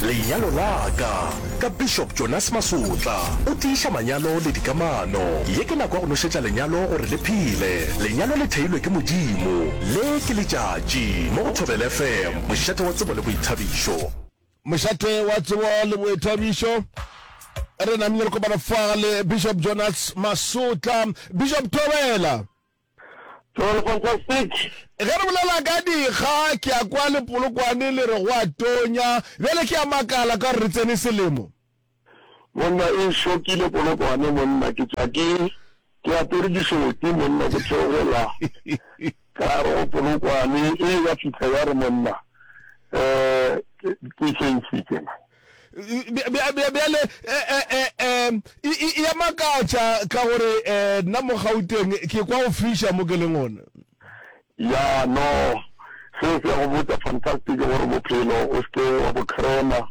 Lenyalo la ka, ka Bishop Jonas Masotla. O tiiša manyalo le dikamano. Ye ke nako ya go nošetša lenyalo gore le phele. Lenyalo le theilwe ke Modimo. Le ke letšatši. Mo go Thobela FM, mošate wa tsebo le boithabišo. Mošate wa tsebo le boithabišo. Re namile re kopana fa le Bishop Jonas Masotla. Bishop Thobela! Toro fantastic. Ge re bolela ka dikga ke a kwa lepolokwane le re go a tonya. Bjale ke a makala ka gore re tsene selemo. Monna e šokile polokwane monna ke tšwa ke ke apere dišoti monna ke theogela ka gare go polokwane e ya fihla ya re monna um ke ke eng se ke na. bjale um ya makatša ka gore um nna mo gauteng ke kwa go fisha mo ke leng one ya no se se go botsa fantastic gore bophelo o seke wa bo crema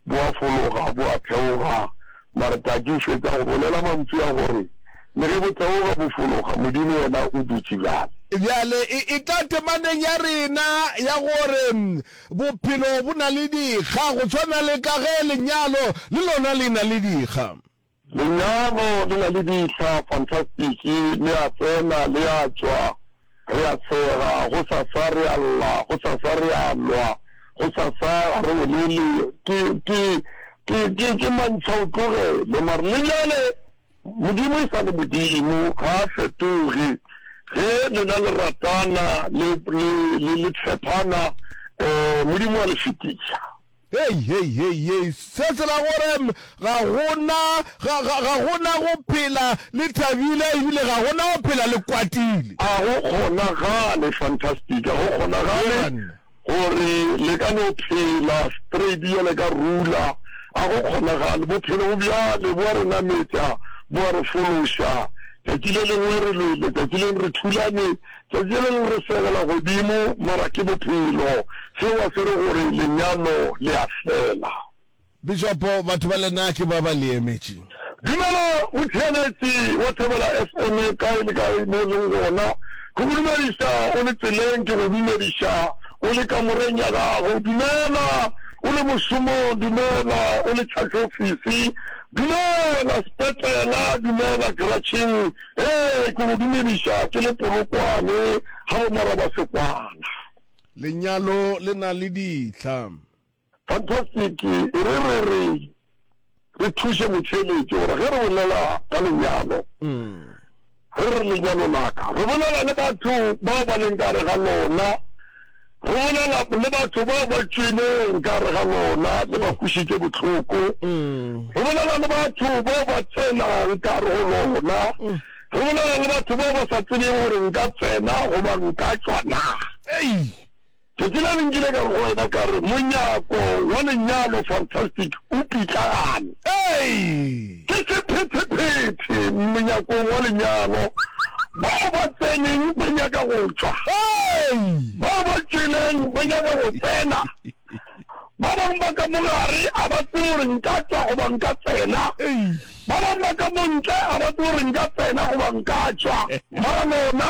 bo a fologa bo a theoga mare taki o fetsa go bolela mantsi a gore le ge bo theoga bo fologa modimo yena o dutse bjale bjale e, e tla temaneng ya rena ya gore Bophelo bo na le dikga, go swana le ka ge lenyalo le lona le na le dikga. Lenyalo le na le dikga, fantastiki, le a tsena, le a tšwa, re a tshega, gosasa re a lla, gosasa re a lwa, gosasa ga re bolele, ke, ke, ke, ke, ke mantšhaotlogele, mare le bjale Modimo e sa le Modimo, ga a fetoge. Ge lena le ratana, le, le, le, le tshepana, um Modimo wa le fetiša. Hei, hei, hei, hei, se se ra gore ga go na, ga, ga, ga go na go phela le thabile ebile ga go na go phela le kwatile. A go kgonagale, fantastic, a go kgona-gale Eya, banna. Gore le ka no phela straight bjale ka rula, a go kgonagale. Bophelo bo bjale bo a re nametša, bo a re fološa. Tšatši le lengwe re lwele, tšatši leng re thulane, tšatši le leng re segela godimo, mara ke bophelo. Seo a se re gore lenyalo le a fela. Bishopo, batho ba lena ke ba ba le emetše. Dumela motšheanetši wa Thobela FM kae le kae mo o leng gona. Ke go dumediša o le tseleng, ke go dumediša o le kamoreng ya gago. Dumela o le mošomong, dumela o le tšhatšofisi, dumela sepetlela, dumela keratšheng. Ee, ke go dumediša ke le Polokwane gabo Marabasekwana. Lenyalo le na le dihla. Fantastic e re re re re thuše motheeletši gore ge re bolela ka lenyalo, re re lenyalo laka, re bolela le batho bao ba leng kare ga lona, re bolela le batho bao ba tšweleng kare ga lona le ba kwišitše bohloko, re bolela le batho bao ba tsenang kare go lona, re bolela le batho bao ba sa tsebeng gore nka tsena goba nka tšwa na. Ei! Phetelane nkile ka re go wena, ka re, Monyako wa Lenyalo, fantastic, o pitlagane. Ee, ke sephethephethe monyakong wa lenyalo, bao ba tseneng ba nyaka go tšwa, bao ba tšweleng ba nyaka go tsena, ba bangwe ba ka mo gare a ba tsebe gore nka tšwa goba nka tsena, ba bangwe ba ka mo ntle a ba tsebe gore nka tsena goba nka tšwa. Mara lona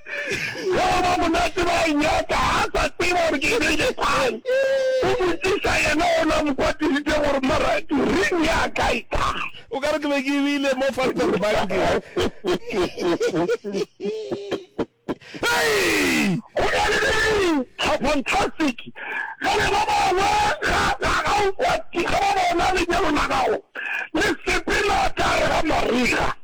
Yo go ba monate ba a nyaka, ga a sa tseba gore ke be ke kgang. O botšiša yena o na mo kwatisitše gore, Mara ring ya ka e kae? O ka re ke be ke bile mo Falterbanke. Hei! Go na le ring! Ha fantastic! Ge re ba bangwe ga ga ga o kwati, ge ba bona lenyalo la gago le sepela ka gare ga mariga.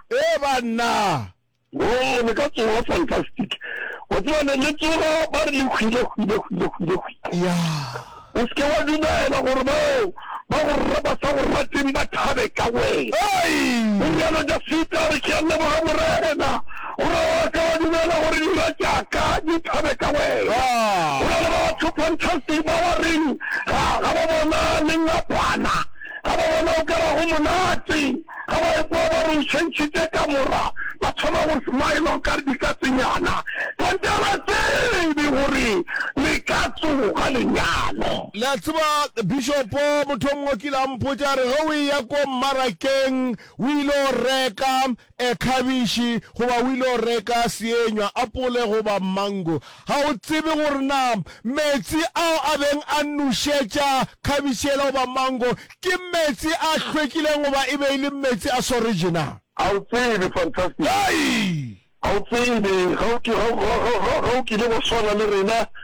Ee, banna. Woo, le ka tsoga, fantastic. O tseba, le, le tsoga, ba re le hwile, hwile, hwile, hwile, hwile. Yeah. O seke wa dumela gore bao ba go rra ba sa go rateng ba thabe ka wena. Ei! O rialo Dafita, a re, Ke a leboga, Morena, gore o ka wa dumela gore dira tša ka di thabe ka wena. Ah. Go na le batho, fantastic, ba ba reng ga, ga ba bona lengapana. Ga ba bona o ka ba go monate. Ga ba ekwa ba re o tšhentšhitše kamora, ba thoma go smiler o ka re dikatsenyana. Kante ga ba tsebe gore le ka tsoga lenyalo. Le a tseba, Bishopo, motho o mongwe o kile a mpotša, a re, Ge o eya ko mmarakeng o ile go reka, e, khabiši, goba o ile go reka seenywa, apole goba mango, ga o tsebe gore na meetse ao a beng a nošetša khabiši yela goba mango ke meetse a hlwekileng goba e be e le meetse a soreje na? Ga o tsebe. Fantastic. Ga o tsebe. Ga o, ga, ga, ga, ga o kile wa swana le rena.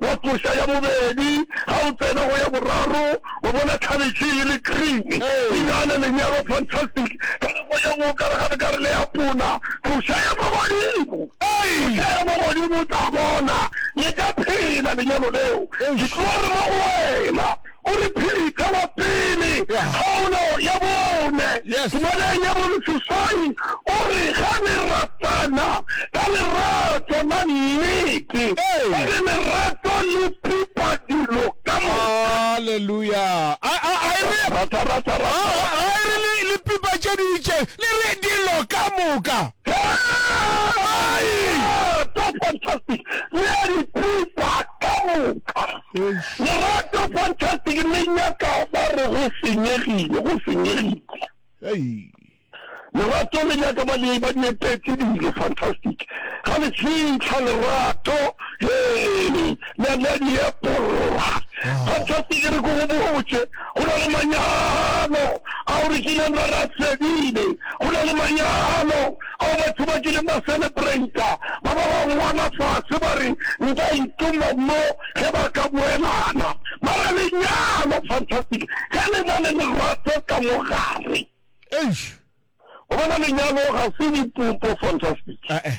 wa koša ya bobedi, ga o tsena go ya boraro o bona khabetšhe e le green, dinana, lenyalo, fantastic ka nako ye nngwe o ka re ga le ka re le ya puna, koša ya mo godimo, koša ya mo godimo o tla bona le ka phela lenyalo leo, ke tlo re mo go wena. O re phirita wa pele, kgaolo ya bone. Tumeleng ya boleseswai o re, Ge le ratana ka lerato la nnete, e le lerato le pipa dilo ka moka. Aleluya! A, a, a e re, Rata, rata, a, rata. a, a e re le, le pipa tše di itšeng, le re, Dilo ka moka. Hei! Lerato, fantastic, le dipipa ka moka. Eish. Lerato fantastic le nyaka ba re go senyegile go senyegile. Hei. Lerato le nyaka ba le ba di epetse dilo fantastic ga le fitlha lerato hee le le di epolla fantastic re go go botse go na le manyalo a o re kileng ra ra fedile go na le manyalo ao batho ba kileng ba selepreita, ba ba ba ngwala fase ba re, Nka ituma mo ge ba ka boelana. Mara lenyalo, fantastic ge le na le lerato ka mo gare. Eish! O bona, lenyalo ga se dipupo, fantastic. Eh-eh.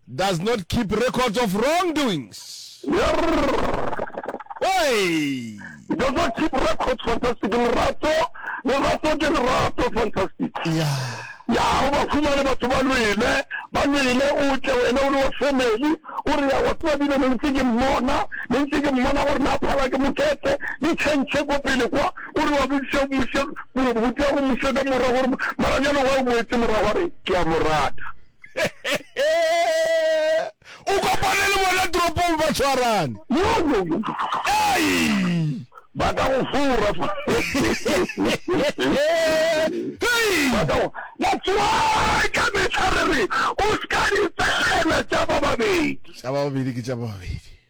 Does not keep records of wrongdoings. Oi! Does not keep records, fantastic. Lerato, lerato ke lerato, fantastic. Ya. Ya, o ba fumane batho ba lwele, ba lwele, o tle wena o le wa family, o re ya wa tseba bile ne ntse ke mmona, ne ntse ke mmona gore na phala ke mokete, di tšhentšhe ko pele kwa, o re wa bodisa mmušo, botea go mmušo ka mora gore maranyane wa o moetse mora gore ke a mo rata. o kopane le bona toropong ba tshwarane ba ka go fora fa that's why ka mehla re re o ska dipegela tša ba babedi tša ba babedi ke tša ba babedi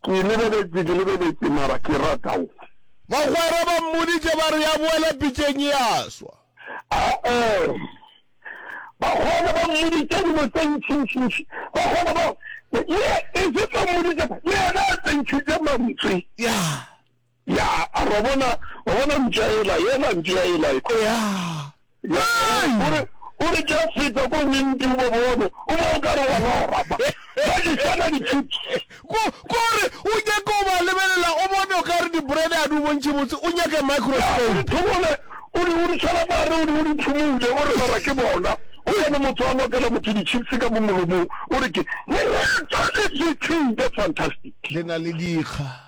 Ke lebeletše, ke lebeletše, mara ke rata go. Bagwera ba mmoditše ba re, Ya boela pitšeng ya swa. A-ee. Bagwera ba mmoditše dilo tše ntšintšintši. Bagwera ba, ye, e se tlo mmoditše, yena a tsentšhitše mantswe. Ya. Ya, a ba bona, ba bona mpša yela, yela mpša yela. Ya. Ya, o re, o re tša feta ko winti o ba bone, o ba o ka re wa lora, ba, ba di sana di-chips. Ko, ko re, o nyaka o ba lebelela, o bone o ka re di-bread a di o bontšhe botse, o nyaka microscope. Ya, o di thomole, o di, o di tshwara ka gare, o di, o di phumule, o re lora ke bona. Go yone motho a lokela motho di-chips ka mo molomong, o re ke, lerato le fetile, fantastic. Le na le dikga.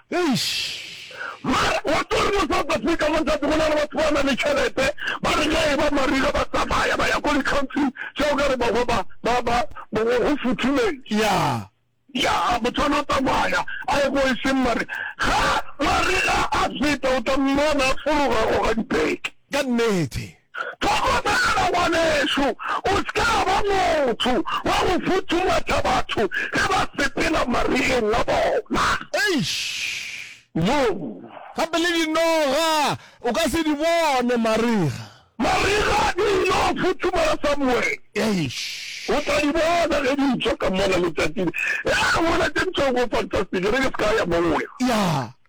Eish! Mara wa tseba re mo South Africa mo ntate go na le batho ba na le tšhelete ba re ge e ba mariga ba tsamaya ba ya ko di country tša o ka re ba go ba ba ba go futhumeng. Yeah. Yeah motho ana tsamaya a ye ko e seng mare ga mariga a feta o tla mmona a fologa go ga dibeke. Ka nnete. Hlokomela, ngwanešu, o se ka ba motho wa go futhumatša batho ge ba sepela mariyeng a bona. Eish! Yo. Gape le dinoga o ka se di bone, marega. Marega di yilo futhumala somewhere. Eish! O tla di bona ge di tšwa ka mola letšatšing. Ee, mola tše ntšhogo, fantastic, e re ke se ka ya moo. Ya.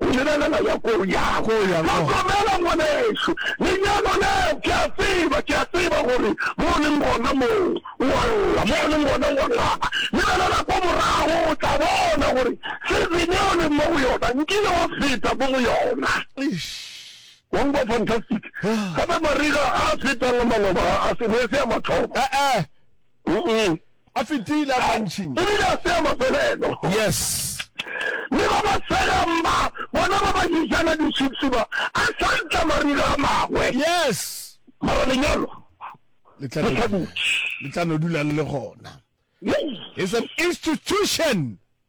Go lebelela ya ko ya go ya go. Hlokomela ngwanešu, lenyalo leo, ke a tseba, ke a tseba gore mo o leng gona moo, o a lla, mo o leng gona o a ngaba. Lebelela kwa morago, o tla bona gore season e o leng mo go yona, nkile wa feta mo go yona. Wa utlwa? Fantastic. Gape mariga a a fetang a maloba a se, ne e se ya mathomo. A fetile a mantšintši. O bile a tsea mafelelo. Yes. Le ba ba segang ba, bona ba ba jejana di-chips ba, a hlantla marira a magwe. Yes. Mara lenyalo le tla no dula le le gona. It's an institution.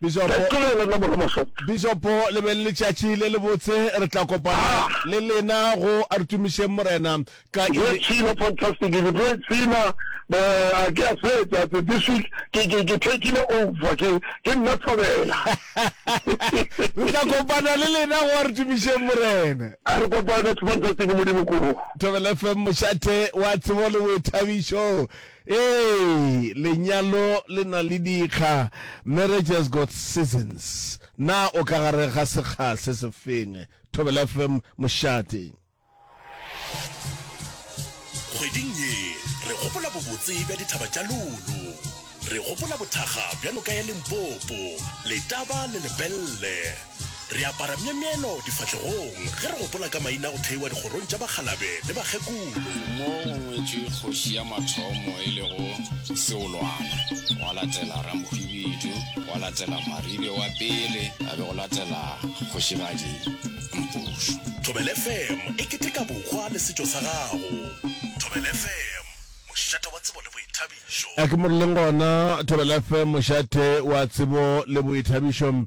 bišopo le be le letšatši le le botse re tla kopana ah. le lena go a re tumišeng morena ka tsena fantastic ke tlo tsena ba ke a fetsa ke this week ke ke ke taking over ke ke nna thabela re tla kopana le lena go a re tumišeng morena a re kopana fantastic modimo ko thabela fm mošate wa tsebo le boithabišo Ee, lenyalo le na le dikga, marriage has got seasons. Na o ka gare ga sekga se se feng? Thobela FM, Mošate. Kgweding ye, re gopola bobotse bja dithaba tša Lulu. Re gopola bothakga bja noka ya Limpopo, Letaba le Lepelle. Re apara myemyelo difahlegong ge re gopola ka maina a go theiwa dikgorong tša bakgalabe le bakgekolo. Mo go ngwetšwe kgoši ya mathomo e lego Seolwana, gwa latela Ramokwibidu, gwa latela Maribe wa pele, ga be go latela Kgošigadi Mpušu. Thobela FM e keteka bohwa le setšo sa gago. Thobela FM, mošate wa tsebo le boithabišo. A ke mo re leng gona, Thobela FM, mošate wa tsebo le boithabišo.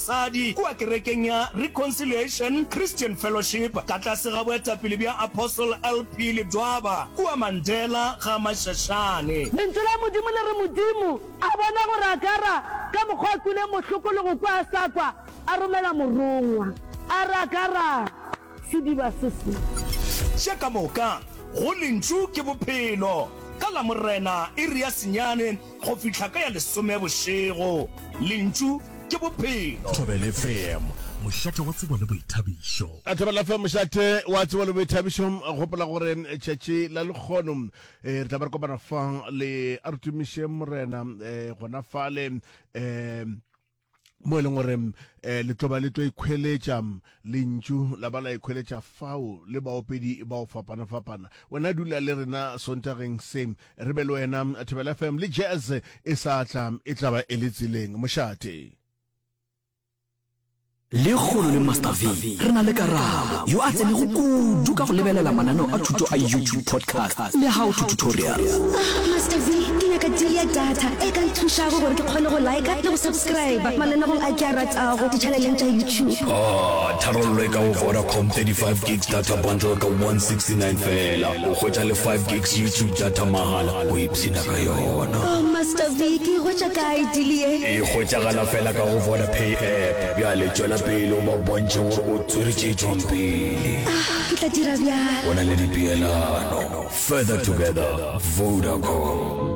Sadi, kua kerekeng ya Reconciliation Christian Fellowship, ka tlase ga boetapele bja Apostle LP Ledwaba, kua Mandela ga Mashashane. Lentšu la Modimo le re, Modimo a bona gore Agara ka mokgwa a kwile mohloko le go kwa a sa kwa, a romela morongwa, a re, Agara, sediba se se. Tše ka moka, go Lentšu ke Bophelo. Ka Lamorena, iri ya senyane, Go fihla ka ya lesome bošego, Lentšu ke Bophelo. Thobela FM, mošate wa tsebo le boithabišo. Thobela FM, mošate wa tsebo le boithabišo. Gopola gore tšatši la lekgono re tla ba re kopana fa le a re tumiše Morena gona fale um mo e leng gore um le tlo ba le tlo ikhweletša lentšu la ba la ikhweletša fao le baopedi ba o fapana-fapana wena dula le rena sontageng se re be le wena thebela fm le jazz e sa tla e tla ba e le tseleng mošate le kgolo le master v re na le karabo yo a tsenego kudu ka go lebelela mananeo a thuto a youtube podcast Le how to tutorials. Ah Master Zee, ke nyaka deal ya data e ka nthušago gore ke kgone go liker le go subscriber mananegong a ke a ratago di-channeleng tša YouTube. Ah, tharollo e ka go Vodacom 35 gigs data bundle ka 169 fela, o hwetša le 5 gigs YouTube data mahala, o ipshina ka yona. Oh Master Zee, ke e hwetša kae deal ye? E hwetšagala fela ka go Vodapay app. Bjale tšwela pele o ba bontšhe gore o tswere tše jwang pele. Ah, Ke tla dira bjalo. Go na le dipeelano. Further together, Vodacom.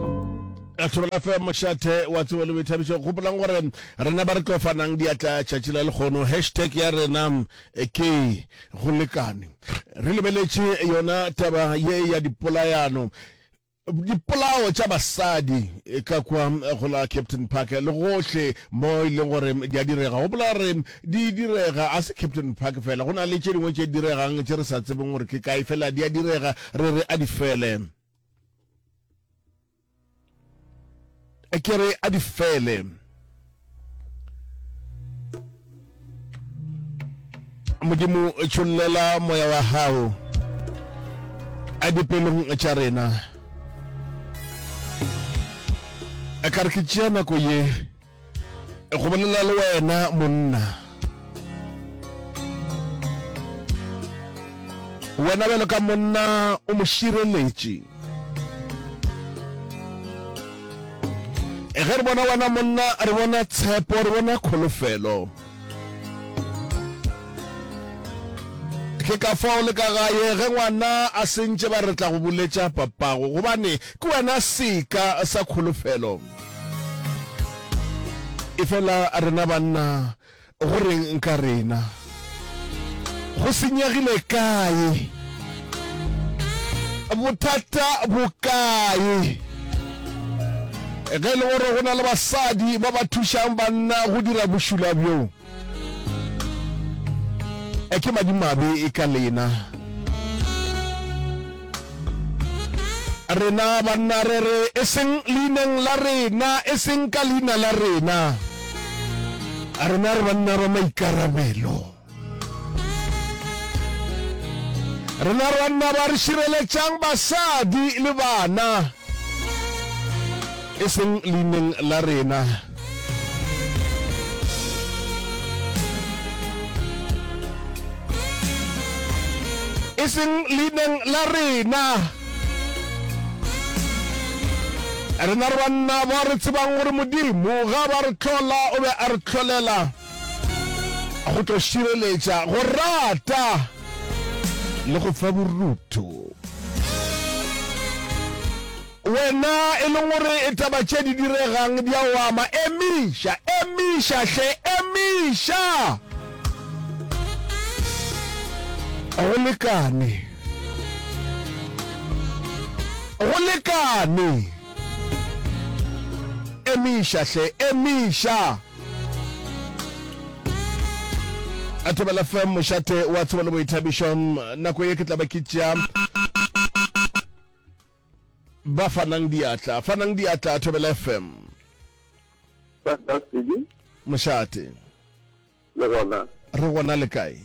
Lethoro la fm mošate wa tsebo le boithabišo gopolang gore rena ba re tlo fanang diatla tšatši la lekgono hashtag ya rena eh, ke go lekane re lebeletše yona taba ye ya dipolayano Dipolao tša basadi ka kwa go la Captain Park le gohle mo e leng gore di a direga. Gopola gore di direga, a se Captain Park fela, go na le tše dingwe tše diregang tše re sa tsebeng gore ke kae, fela di a direga, re re a di fele. ke re a di fele modimo tšhollela moya wa gago a dipelong tša rena a ka re ke tšea nako ye go bolela le wena monna wena bjalo ka monna o mo šireletše e ge re bona wena monna re bona tshepo re bona kholofelo ke ka fao le ka gae ge ngwana a sentše ba re tla go boletša papago gobane ke wena seka sa kholofelo e fela rena banna go reng nka rena go senyegile kae bothata bo kae ge e le gore go na le basadi ba ba thušang banna go dira bošula bjoo E ke madimabe e ka lena. Rena banna re re e seng leineng la rena, e seng ka leina la rena. Rena re banna ba maikarabelo. Rena re banna ba re šireletšang basadi le bana. e seng leineng la rena. e seng leineng la rena rena re banna ba re tsebang gore modimo ga ba re tlhola o be a re tlholela go tlo šireletša go rata le go fa borutho. Wena e leng gore e taba tše di diregang di a o ama, emiša, emiša hle, emiša! Go lekane, go lekane, emiša hle, emiša! a thobela fm mošate wa tsebo le boithabišo nako ye ke tla ba ke tšea ba fanang diatla fanang diatla a thobela fm mošate le gona re gona le kae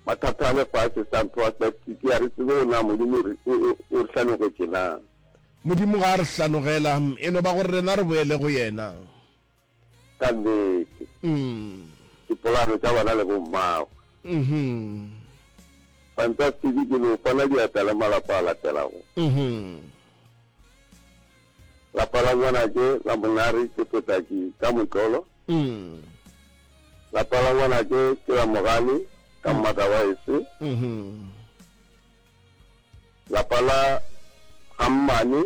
Mathata a lefase, San Prospectic, a re tsebe go na Modimo o re hlanogetše na. Modimo ga a re hlanogela, e no ba gore rena re boele go Yena. Ka nnete. Dipolano tša bana le bommagwe. Fantastiki, ke no fana diatla le malapa a latelago. Lapa la Ngwanake la Monare ke potaki ka motlolo. Mm. Lapa la ngwanake ke la mogale ka mmata wa ese. Mhm. Lapa la ga mmane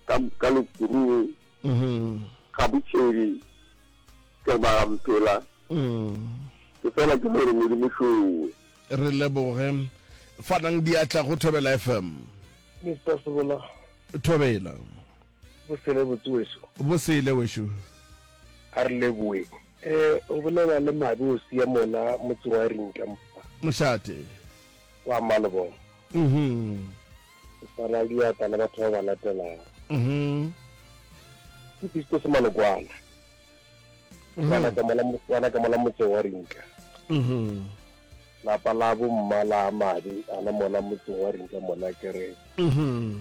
ka ka lekurung Mhm. ga botšhedi ke re ba ga mphela Mm. ke fela ke gore modimo šowe. Re leboge. Fanang diatla go Thobela FM. Mister Sebola. Thobela. Bo sele botse weso. Bo sele weso. A re leboe. E, o bolela le mabe o siya mona motse wa rinka mpa. Moshate. Kwa malobong. Mhm. O tsala diata le batho ba ba latelang. Mhm. Ke pisto se malokwana. Mhm. Wana ka mola wana ka mola motse wa rinka. Mhm. Lapa la bo mmala a mabe ana mona motse wa rinka mona kere. Mhm.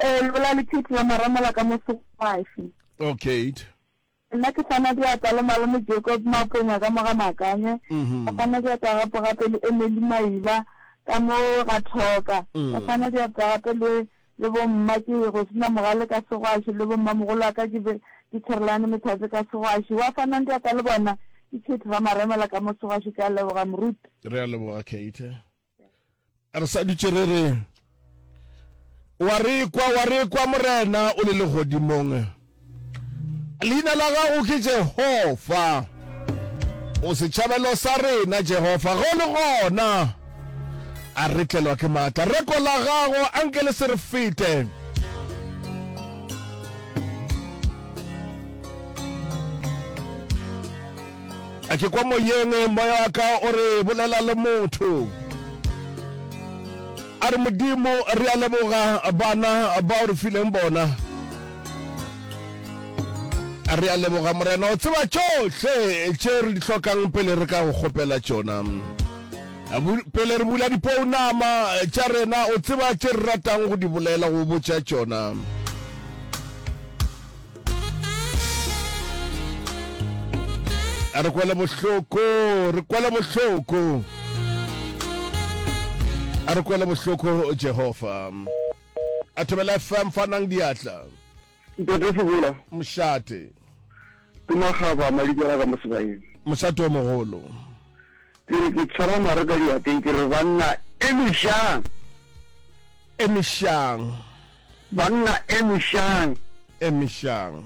Ee, lebola le Pete ba Maramola ka mo Segwaši. Oh, Kate. Nna ke kgona diata le Malome Jacob Maponya ka mo ga Makanye, ke kgona diata gape gape le Emily Maiba ka mo ga Thoka, ke kgona diata gape le le bo mma ke Rosina Mogale ka Segwaši le bo mmamogolo wa ka ke be ke Therelane Methatse ka Segwaši. Wa fanang diata le bona ke Kate ba Maremela ka mo Segwaši. Ke a leboga moruti. Re a leboga Kate. Re sa dutše re re, Wa re kwa, wa re kwa, Morena o le legodimong. Leina la gago ke Jehofa. O setšhabelo sa rena, Jehofa. Go le gona a re tlelwa ke maatla. Reko la gago a nke le se re fete. A ke kwa moyeng, moya wa ka o re, Bolela le motho. A re, Modimo, re a leboga bana ba o re fileng bona. A re a leboga Morena, o tseba tšohle tše re di hlokang pele re ka go kgopela tšona. A bu- Pele re bula dipounama tša rena, o tseba tše re ratang go di bolela, go botša tšona. a re kwele bohloko re kwele bohloko a re kwele bohloko jehova a thobela fm fanang diatla ntate sebola mošate ke magaba madikela ka mo sebaeng mošate o mogolo ke re ke tshwara mare ka diateng ke re banna e mešang e mešang Banna emišang. Emišang.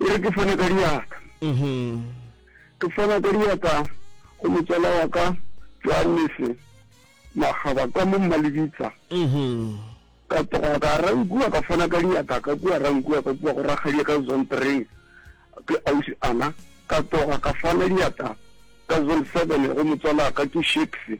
E re ke fone ka diatla. Ke fona ka diatla go motswala wa ka Johannes Magaba kwa mo Mmalebitsa. Ka tloga ka Rankuwa ka fona ka diatla ka kua Rankuwa ka kua go rakgadi ka Zontereng ke ausi Ana. Ka tloga ka fona diatla ka Zone seven go motswala ka ke Shakes.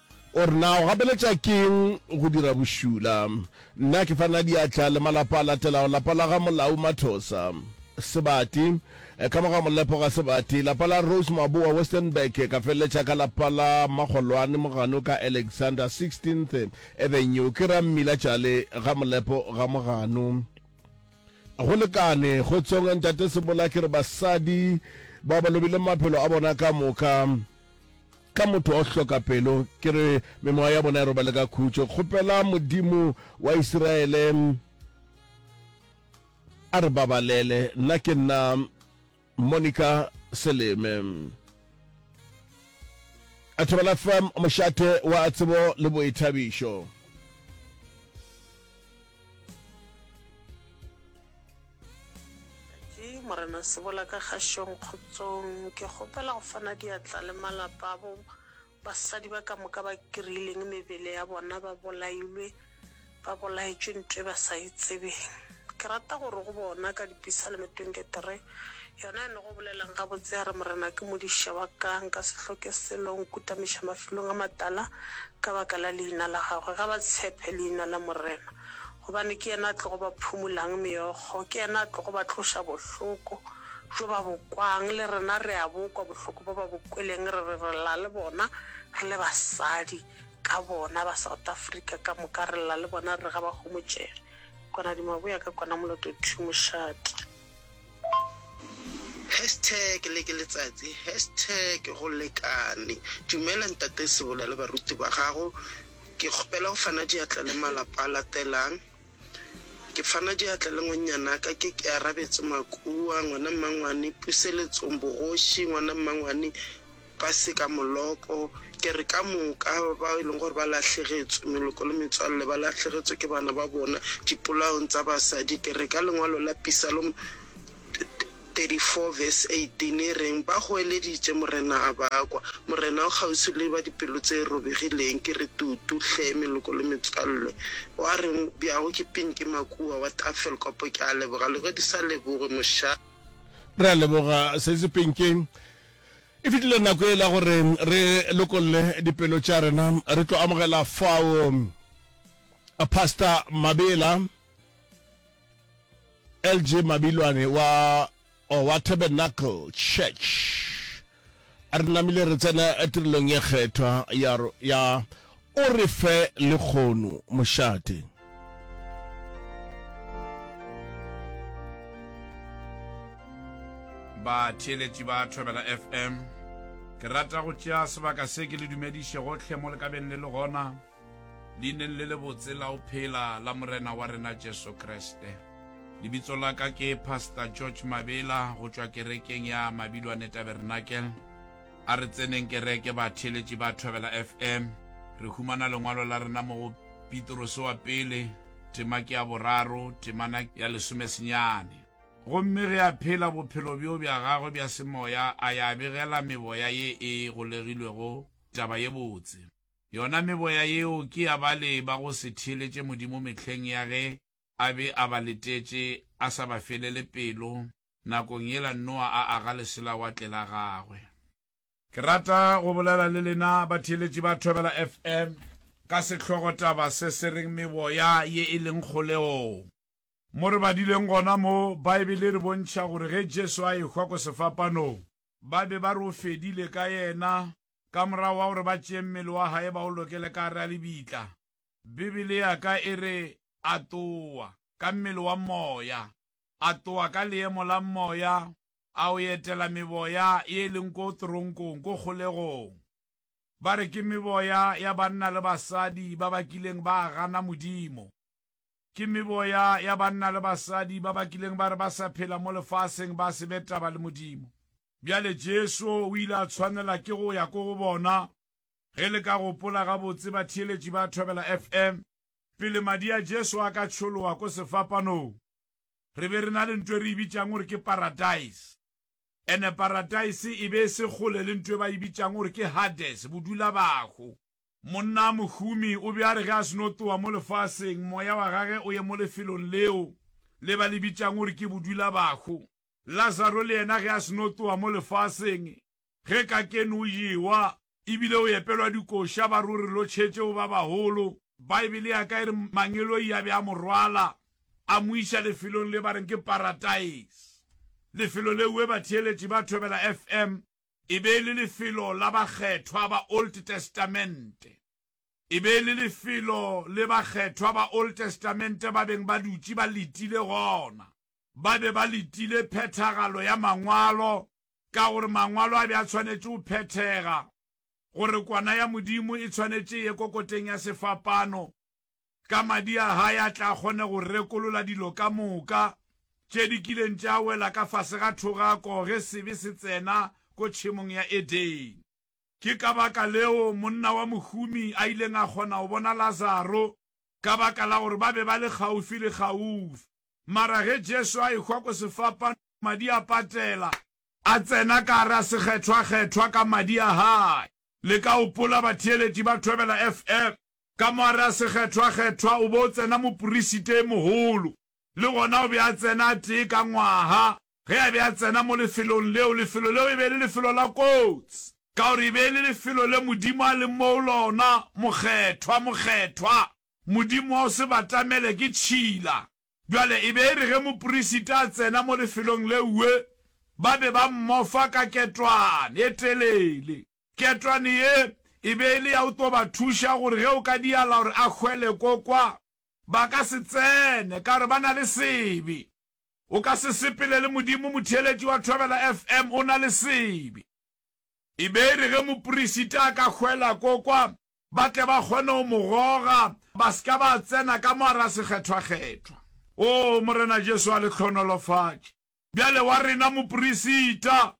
O re, Na o gapeletša ke'ng go dira bošula? Nna ke fa na diatla le malapa a latelago, lapa la ga Molau Mathosa, Sebati, ka mo ga Molepo ga Sebati, lapa la Rose Maboa, Westenburg, ka feleletša ka lapa la Magolwane Mogano ka Alexander, 16th Avenue, ke ra Mmila Tšale ga Molepo ga Mogano. Go lekane, Kgotsong, Ntate Sebola, ke re basadi ba ba lobile maphelo a bona ka moka. ka motho o hloka pelo ke re memoya ya bona e robale ka khutšo kgopela modimo wa isiraele a re babalele nna ke nna monica seleme a thobela fm mošate wa tsebo le boithabišo Ke Morena Sebola ka Kgašong Kgotsong. Ke kgopela go fana diatla le malapa abo basadi ba ka moka ba kry-ileng mebele ya bona ba bolailwe, ba bolaetšwe nto e ba sa e tsebeng. Ke rata gore go bona ka Dipisalme 23, yona e nogo bolelang gabotse ya re, Morena ke modiša wa ka, nka se hloke selo, o nkutamiša mafilong a matala ka baka la leina la gagwe. Ga ba tshephe leina la Morena. gobane ke yena a tlogo ba phumolang meokgo, ke yena a tlogo ba tloša bohloko bjo ba bo kwang. Le rena re a bo kwa bohloko bjo ba bo kweleng, re re re lla le bona, re le basadi ka bona, ba South Africa ka moka re lla le bona, re re ga ba homotšege. Kona di maboya ka kona moloto two mošate. Hashtag le ke letsatsi Hashtag go lekane Dumela Ntate Sebola le baruti ba gago Ke kgopela go fana diatla le malapa a latelang Ke fana diatla le ngwannyanaka ke ke arabetse Makua, Ngwana Mmangwane, Puseletsong, Bogoši, Ngwana Mmangwane, ba se ka moloko, ke re ka moka, bao e leng gore ba lahlegetso, meloko le metswalle, ba lahlegetso ke bana ba bona dipolaong tsa basadi, ke re ka lengwalo la Pisalom 34 verse 18 e reng, Ba goeleditše Morena a ba kwa, Morena o kgauswi le ba dipelo tše robegileng, ke re tutu hle, meloko le metswalle. Wa reng bjago ke Pinki Makuwa wa Tafelkop, ke a leboga le ge di sa lebogwe, moša. Re a leboga sesi Pinki. E fetile nako yela gore re lokolle dipelo tša rena. Re tlo amogela fao a Pastor Mabela LG Mabilwane wa o wa Tabernacle Church. A re namile re tsena tirelong ye kgethwa ya ro- ya O re fe le kgono, mošate. Batheeletši ba Thobela FM, ke rata go tšea sebaka se ke le dumediše gohle mo le ka beng le le gona, leineng le lebotse la go phela la Morena wa rena Jesu Kriste. Lebitso la ka ke Pastor George Mabela go tšwa kerekeng ya Mabilwane Tabernacle. A re tseneng kereke, batheeletši ba Thobela FM. Re humana lengwalo la rena mo go Pitrose wa Pele, tema ke ya boraro, temana ya lesomesenyane. Gomme ge a phela bophelo bjo bja gagwe bja semoya, a ya begela meboya ye e golegilwego taba ye botse. Yona meboya yeo ke ya bale ba go se theeletše Modimo mehleng ya ge a be a ba letetše, a sa ba felele pelo, nakong yela Noa a aga leselawatle la gagwe. Ke rata go bolela le lena batheeletši ba Thobela FM ka sehlogotaba se se reng Meboya ye e leng Kgolegong. Mo re badileng gona mo, Baebele e re bontšha gore ge Jesu a ehwa ko sefapanong, ba be ba re o fedile ka yena ka morago wa gore ba tšee mmele wa gae ba o lokele ka gare ga lebitla. Bibele ya ka e re a tlowa, ka mmele wa moya. A tloga ka leemo la moya a o etela meboya ye e leng ko toronkong, ko kgolegong. Ba re ke meboya ya banna le basadi ba ba kileng ba gana Modimo. Ke meboya ya banna le basadi ba ba kileng ba re ba sa phela mo lefaseng ba se be taba le Modimo. Bjale Jesu o ile a tshwanela ke go ya ko go bona, ge le ka gopola gabotse, batheeletši ba Thobela FM, pele madi a Jesu a ka tšholowa ko sefapanong. re be re na le ntwe re e bitšang gore ke paradise ene paradise e be e se kgole le ntwe ba e bitšang gore ke hades bodula bago monna a mohumi o be a re ge a seno towa mo lefaseng moya wa gage o ye mo lefelong leo le ba le bitšang gore ke bodula bago lazaro le yena ge a seno towa mo lefaseng ge kakeni o jewa e bile o epelwa dikoša ba re o re lotšhetšeo ba bagolo. Baebele ya ka e re mangeloi a be a mo rwala a mo iša lefelong le ba reng ke parataise. Lefelo leue batheeletši ba Thobela FM e be e le lefelo la bakgethwa ba Old Testamente. E be e le lefelo le bakgethwa ba Old Testamente ba beng ba dutše ba letile gona. Ba be ba letile phethagalo ya Mangwalo ka gore Mangwalo a be a tshwanetše go phethega, gore Kwana ya Modimo e tshwanetše e ye kokoteng ya sefapano, ka Madi a Hae a tla kgone go rekolola dilo ka moka tše di kileng tša wela ka fase ga thogako ge sebe se tsena ko tšhemong ya Edene. Ke ka baka leo monna wa mohumi a ileng a kgona go bona Lazaro, ka baka la gore ba be ba le kgaufilekgaufsi. Mara ge Jesu a ehwa ko sefapano, madi a patela. A tsena ka gare a sekgethwakgethwa ka madi a hae. Le ka gopola batheeleti ba Thobela FM? Ka mo gare a sekgethwakgethwa o be o tsena moporisite e mogolo. Le gona o be a tsena a tee ka ngwaga ge a be a tsena mo lefelong leo. Lefelo leo e be e le lefelo la kotsi, ka gore e be e le lefelo le Modimo a leng mo go lona. Mokgethwa, Mokgethwa, Modimo wa go se batamele ke tšhila. Bjale e be e re ge moperisita a tsena mo lefelong leue, ba be ba mmofa ka ketwane e telele. Ketwane ye e be e le ya go tlo ba thuša gore ge o ka diala gore a hwele ko kwa, ba ka se tsene ka gore ba na le sebe. O ka se sepele le Modimo, motheeletši wa Thobela FM o na le sebe. E be e re ge moperisita a ka hwela ko kwa, ba tle ba kgone go mo goga, ba se ka ba tsena ka mo a ra sekgethwakgethwa. Oo, Morena Jesu a le hlohonolofatše. Bjale wa rena moprisita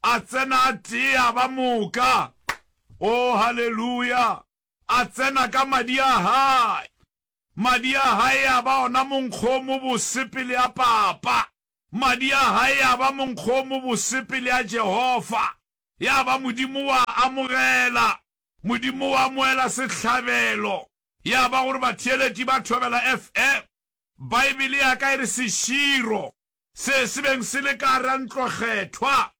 a tsena a tee a ba moka. Oo, haleluya! A tsena ka madi a Hae. Madi a Hae a ba ona monkgo o mobose pele a Papa. Madi a Hae a ba monkgo o mobose pele a Jehofa. Ya ba Modimo wa a amogela, Modimo o amoela sehlabelo. Ya ba gore batheeletši ba thobela FE, Baebele ya ka e re seširo se se beng se le ka gare ga ntlokgethwa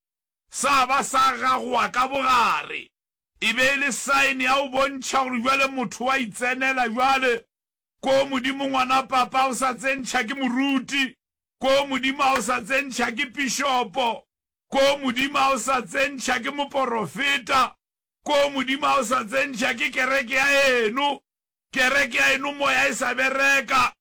sa ba sa gagoa ka bogare. E be e le saene ya go bontšha gore bjale motho wa itsenela bjale ko Modimo ngwana papa a o sa tsentšha ke moruti, ko Modimo a o sa tsentšha ke pišopo, ko Modimo a o sa tsentšha ke moporofeta, Ko Modimo a o sa tsentšha ke kereke ya eno, kereke ya eno moya e sa bereka,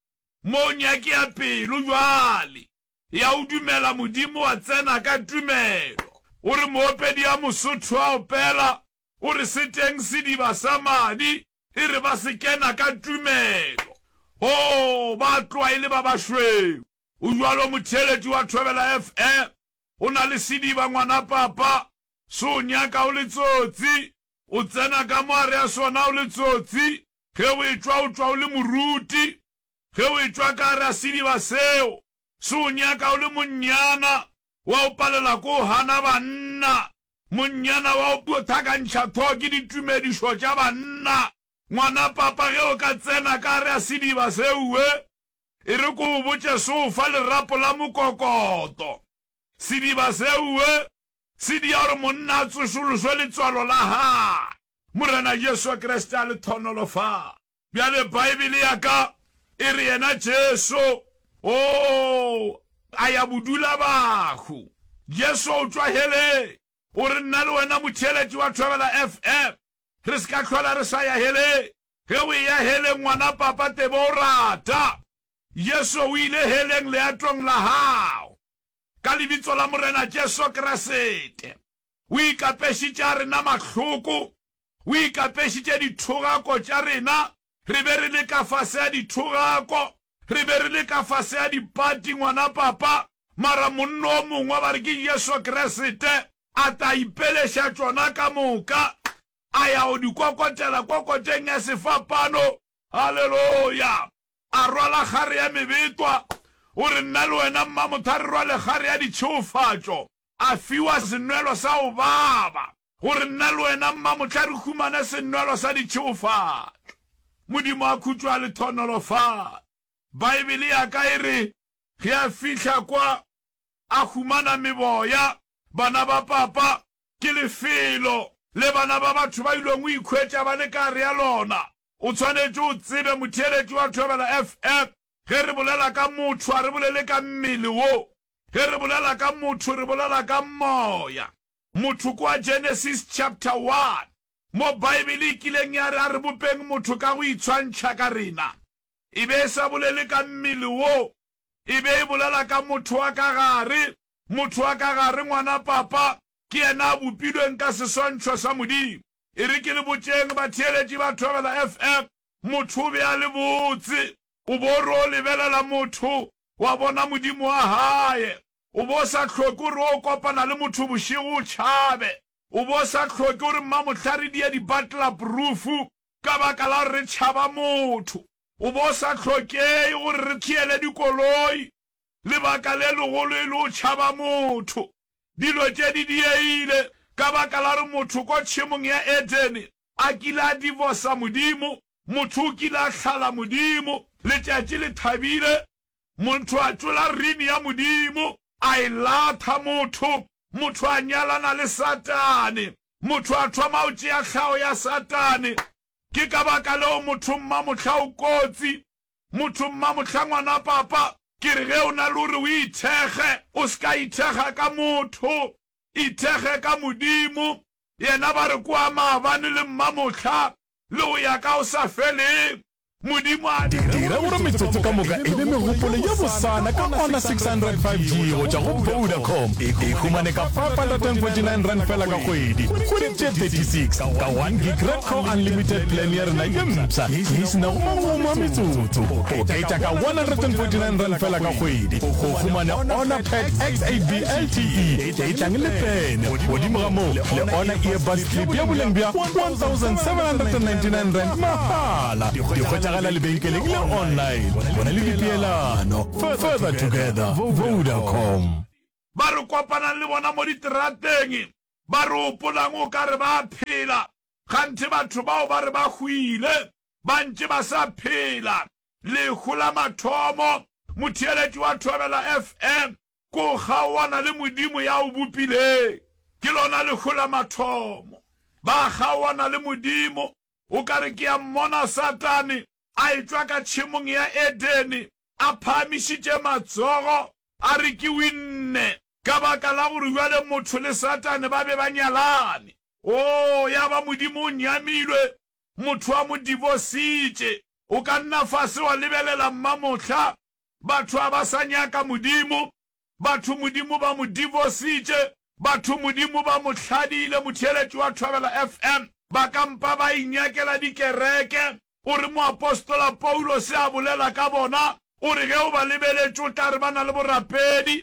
moo nyaki ya pelo jwale ya o dumela Modimo wa tsena ka tumelo. O re moopedi ya Mosotho a opela, o re se teng sediba sa madi, e re ba se kena ka tumelo. Oh, ba tloa e le ba bašweu. O jwalo motheeletši wa Thobela FM, o na le sediba ngwana papa, Se o nyaka o le tsotsi. O tsena ka mo gare ga sona o le tsotsi. Ge o etšwa o tšwa o le moruti. Ge o etšwa ka gare ga sediba seo. Se o nyaka o le monnyana. Wa o palela ko o gana banna. Monnyana wa o pothakantšha tho ke ditumedišo tša banna. Ngwana papa ge o ka tsena ka gare ga sediba seue. E re ko o botše se o fa lerapo la mokokoto. Sediba seue Tsedi ya gore monna a tsošološwe letswalo la gagwe. Morena Jesu Kriste a le thonolo fa. Bjale Baebele ya ka e re yena Jesu o a ya bodula bahu. Jesu o tšwa heleng. O re nna le wena motheeletši wa Thobela FM re se ka hlola re sa ya heleng. Ge o eya heleng ngwana papa tebo o rata Jesu o ile heleng leatong la gago. Ka Lebitso la Morena Jesu Kriste, O ikapešitše a rena mahloko, O ikapešitše dithogako tša rena, re be re le ka fase a dithogako, re be re le ka fase a dipati, ngwana Papa, mara monna o mongwe, ba re ke Jesu Kriste, a tla ipeleša tšona ka moka, a ya go di kokotela kokoteng ya sefapano. Haleloya! A rwala kgare ya mebetwa, O re nna le wena Mmamotha re rwale kgare ya ditšheofatšo. A fiwa senwelo sa go baba, O re nna le wena Mmamotha re humane senwelo sa ditšheofatšo. Modimo a khutšo a le thonolofatše. Baebele ya ka e re, Ge a fihla kwa, a humana meboya, bana ba papa, ke lefelo le bana ba batho ba ilweng go ikhwetša ba le ka gare ga lona. O tshwanetše o tsebe, motheeletši wa thobela FF, ge re bolela ka motho a re bolele ka mmele wo. Ge re bolela ka motho re bolela ka moya. Motho kwa Genesis chapter one, mo Baebele e kileng ya re a re bopeng motho ka go itshwantšha ka rena, e be e sa bolele ka mmele wo. E be e bolela ka motho wa ka gare. Motho wa ka gare, ngwana papa, ke yena a bopilweng ka seswantšho sa Modimo. E re ke le botšeng batheeletši ba Thobela FM, motho o be a le botse? O bo o re o lebelela motho, wa bona Modimo wa gae. O bo o sa hloke o re o kopana le motho bošego o tšhabe. O bo o sa hloke o re mmamohla re die dibatlelaporufu ka baka la gore re tšhaba motho. O bo o sa hlokei gore re theele dikoloi Lebaka le legolo e le o tšhaba motho. Dilo tše di diegile ka baka la gore motho ko tšhemong ya Edene a kile a divosa Modimo. Motho o kile a hlala Modimo. Letšatši le thabile, montho a tšola rini ya Modimo a e latha. Motho, motho a nyalana le Satane. Motho a thoma go tšea hlago ya Satane. Ke ka baka leo motho mmamohla o kotsi Motho mmamohlangwana papa, ke re ge o na le gore o ithekge, o se ka ithekga ka motho, ithekge ka Modimo. Yena ba re ke wa maabane le mmamohla le go ya ka go sa feleng. Modimo a dira gore metsotso ka moka e be megopolo ye bosana ka ona 600 5G go tšwa go Vodacom. E humane ka 549 rand fela ka kgwedi, kgwedi tše 36, ka one gig Red Core Unlimited plan ya rena ye mpsha. di se nago mangwao a metsotso go oketša ka R149 fela ka kgwedi go humana Honor Pad X8B LTE e tlang le pene, godimo ga moo le Honor Earbuds Clip ya boleng bja R1,799 mahala. Di hwetšagala lebenkeleng le online. Bona le dipeelano. Further together, Vodacom. Ba re kopanang le bona mo diterateng, ba re, Hopolang o ka re ba a phela. Kganthe batho bao ba re ba hwile ba ntše ba sa phela. Lehu la mathomo, motheeletši wa Thobela FM, ke o kgaoana le Modimo ya o bopileng. Ke lona lehu la mathomo. Ba kgaoana le Modimo. O ka re ke a mmona Satane a etšwa ka tšhemong ya Edene a phahamišitše matsogo a re ke winne, ka baka la gore bjale motho le Satane ba be ba nyalane. Oo, ya ba Modimo o nyamilwe, motho a mo divositše. O ka nna fase wa lebelela mmamohla, batho ga ba sa nyaka Modimo, batho Modimo ba mo divositše, batho Modimo ba mo hladile. Motheeletši wa Thobela FM, ba ka mpa ba inyakela dikereke. O re moapostola Paulose a bolela ka bona, o re ge o ba lebeletše o tla re ba na le borapedi,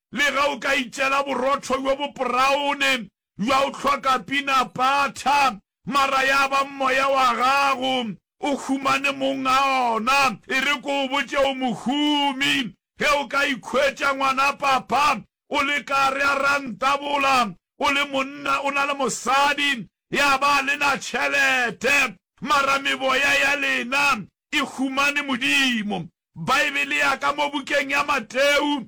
Lega o ka itšela borotho bjo bopraone bja o hloka pinapatha, mara ya ba moya wa gago o humane mong a ona. E re ke o botše, o mohumi ge o ka ikhwetša ngwana papa o le kare a rantabola, o le monna o na le mosadi ya ba a lena tšhelete, mara meboya ya lena e humane Modimo? Baebele ya ka mo bukeng ya Mateu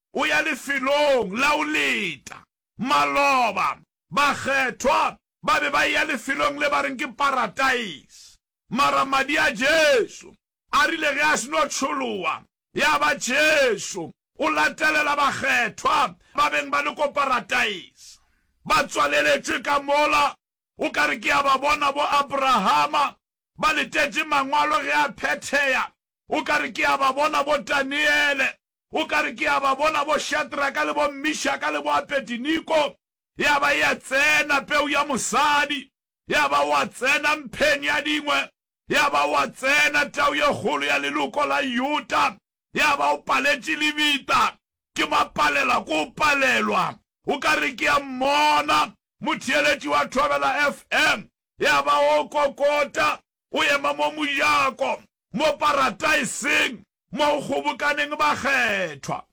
o ya lefelong la go leta. Maloba, bakgethwa ba be ba eya lefelong le ba reng ke parataise. Mara Madi a Jesu a rile ge a seno tšholowa, ya ba Jesu o latelela bakgethwa ba beng ba le ko parataise. Ba tswaleletšwe ka mola, o ka re ke ya ba bona bo Abrahama, ba letetše Mangwalo ge a phetheya, o ka re ke ya ba bona bo Daniele, O ka re, Ke a ba bona bo-Shadraka le bo-Mishaka le bo-Abediniko, ya ba ya tsena peu ya mosadi, ya ba wa tsena mpheng ya dingwe, ya ba wa tsena tau ye kgolo ya leloko la Yuta, ya ba o paletše lebita. Ke mapalela, ke o palelwa. O ka re, Ke a mmona motheeletši wa Thobela FM, ya ba o kokota, o ema mo mojako, mo Parataiseng, mo go kgobokaneng bakgethwa.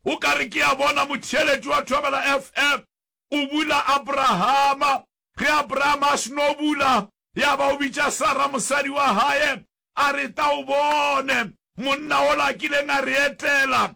O ka re ke a bona motheeletši wa Thobela FM o bula Abrahama, ge Abrahama a seno bula, ya ba o bitša Sara mosadi wa gae, a re, Tla o bone monna ola a kileng a re etela,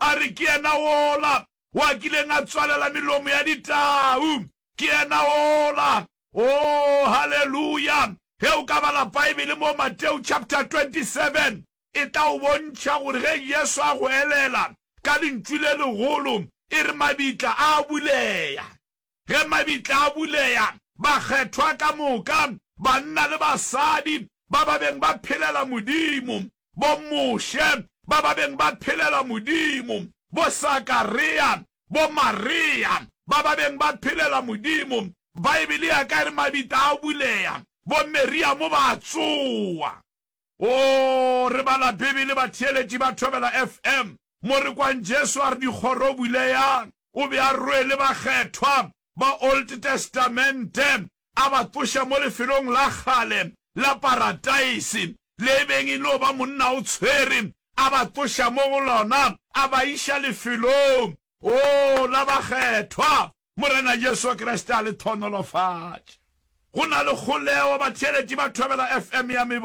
a re, Ke yena wola o a kileng a tswalela melomo ya ditau. Ke yena wola. Oo, haleluya! Ge o ka bala Baebele mo Mateo chapter 27, e tla o bontšha gore ge Jesu a go elela ka lentšu le legolo, e re mabitla a a bulega. Ge mabitla a buleya, bakgethwa ka moka, banna le basadi, ba ba beng ba phelela Modimo, bo-Moshe, ba ba beng ba phelela Modimo, bo-Sakarea, bo-Maria, ba ba beng ba phelela Modimo, Baebele ya ka e re mabitla a buleya, bo-Meriamo ba tsowa. Oo, re bala Bibele, batheeletši ba thobela FM, mo re kwang Jesu a re, Dikgoro buleyang! O be a rwele bakgethwa ba Old Testamente, a ba tsoša mo lefelong la kgale la Parataisi, le e beng e no ba Monna o tshwere, a ba tsoša mo go lona, a ba iša lefelong, oo, la bakgethwa. Morena Jesu Kriste a le thonolofatše. Go na le kgoleo, batheeletši ba thobela FM ya mebo.